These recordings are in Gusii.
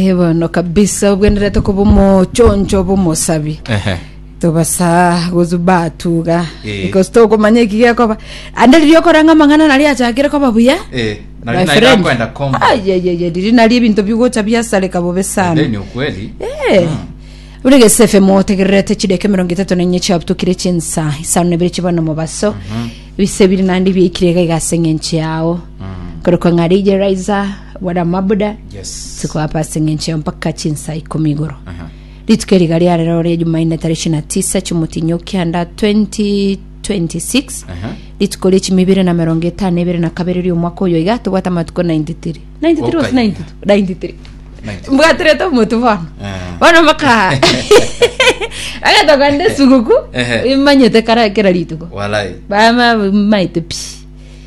Eh, bono kabisa obwenerete koba omochoncho b'omosabi Ehe. tobasa gosu batuga Eh. because tokomanya eki gekoba ande riria okoranga amang'ana nari achakire koba buya Eh, nari My naira friend. kwenda kombo. ayeyeye riri nari ebinto bigocha biasareka bobe sana Then ukweli. Eh. ore gesefe motegererete chideke mirongo itatu na inye chiabutukire chinsa isano nebere chibana mobaso bise biri nandi biaikire iga igase ng'enche yao korokwa ng'arije raiza Buna mabuda Yes. sikoapa ase eng'encho eye mpaka chinsa ikomi igoro Aha. rituko eri iga riare rero ria jumaine tarehe ishirini na tisa chimotinyo kianda 2026 Aha. rituko ria chimi ibere na merongo etano ebere na kabere ria omwaka oyo iga tobwate amatuko 93 93 was Okaina. 92 93 mbwaterete omotu bono Ah. bono mpaka agatogande suguku Ehe. imanyete kara kera rituko Walai. bama maite pi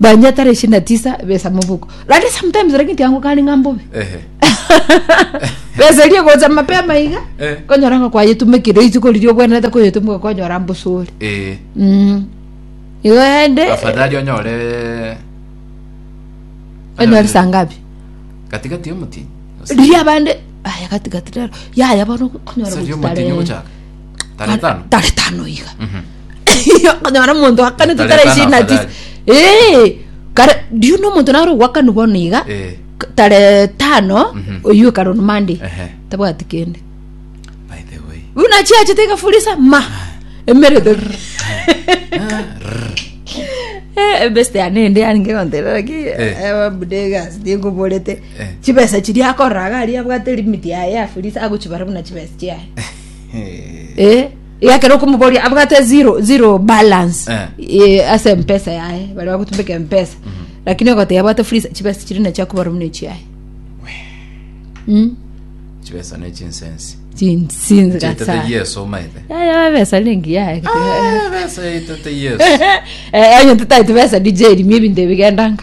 Dania tarehe ishirini na tisa besa mobuko rande sometimes lakini tiango kari ng'a mbobe Ehe. besa eria egocha mapema iga Eh. konyora ng'a kwayetumekire isiko riria obwenerete koyetumeka konyora mbosori Eh, Mm. igo ende afadhali onyore onyore saa ngapi katikati y'omotini riria abande aya gatigati rero yaya bono konyora Sasa riomotinyo gochitarehe gochaka. Tare tano. tare tano iga okonyora omonto akane Tare titare tano ishirini na tisa afadhali. Eh, kare riu na omonto naro ogwakanu bono iga Eh, k- tare tano Mhm. oyio ekaro ni mande Ehe. tabwati kende by the way. riu nachiachete igafurisa ma emerete Eh, ebeste yane ende yari ngegonterera ki Eh. ebabudegas ndingoborete Eh. chibesa chiria akoraga aria abwate limiti yaye afurisa agochibara buna chibesa chiaye Eh, iga ekero okomoboria abwate zero zero balance Eh. eh, ase mpesa yaye bari bagotumbeka mpesa lakini ogoteba abwate free chibesa chiri nacho akobara buna echiaye Mm, chibesa ne chinsensi chin- sinzi chetete gasa. yesu omaete Yaya babesa lingi yaye besa etete yesu Eh, onye tutaiti besa dj rimie ebinto ebigendanga